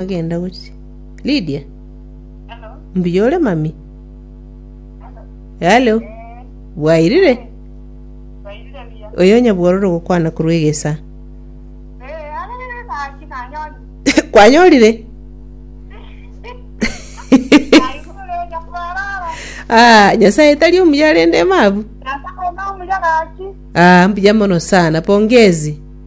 Agenda gochia. Lydia. Mbuya ore mami. Hello. Bwairire. Oyo nyabwororo gokwana korwa egesa. Kwanyorire. Ah, nyasaye tari omuya rende mabu. Ah, mbuya mono sana. Pongezi.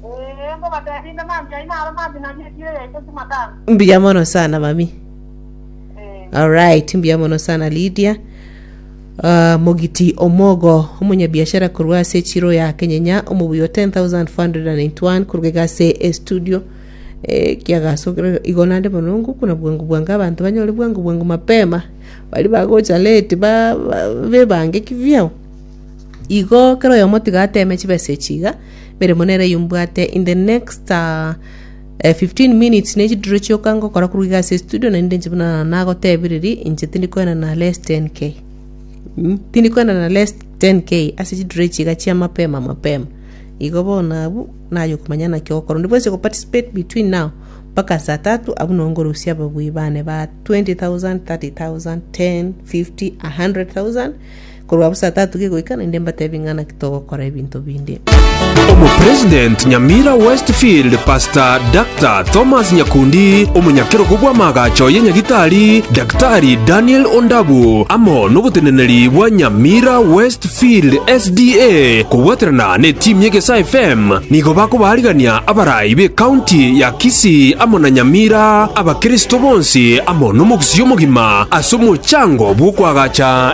Erio bateebia inde, Mambia aino aro mambia na rieti eye ase chimatanga. Mbuya mono sana mami. Eh, Alright, mbuya mono sana Lydia. Uh, Mogiti Omogo, omonyabiashara korwa ase Chiro ya Kenyenya, omobuyo 10491 korwa iga ase e studio. Eh, kiagasokire igo nande monongu kuna bwangu bwangu abantu banyore bwangu bwangu mapema bari bagocha late ba, ba bebange kivyao Igo kera oyomo tiga ateme chibesa echi iga, emeremo nere eyio mbwate in the next ah, eh, 15 minutes ne chidiro chioka ngokora korwa iga ase estudio na ninde inche buna nagotebiriri inche tindi kwena na less 10k Mm, tindi kwena na less 10k ase chidiro echi iga chia mapema mapema igo bono abwo naywo komanya naki ogokora onde bwensi okoparticipate between now mpaka saa tatu abwo noo nkorusia ababui bane ba 20000, 30000, 10, 50, 100000 Korwa bosa tatuge goika naende mbatebi ng'a naki togokora ebinto binde. Omopresident Nyamira Westfield Pastor Dr. Thomas Nyakundi, omonyakerogo bw'amaagacho ya Nyagitari Daktari Daniel Ondabu, amo noboteneneri bwa Nyamira Westfield SDA kobwaterana ne team y'Egesaa FM nigo bakobaarigania abarai be county ya Kisii amo na Nyamira abakristo bonsi amo nomogusii omogima ase omochango bw'okoagacha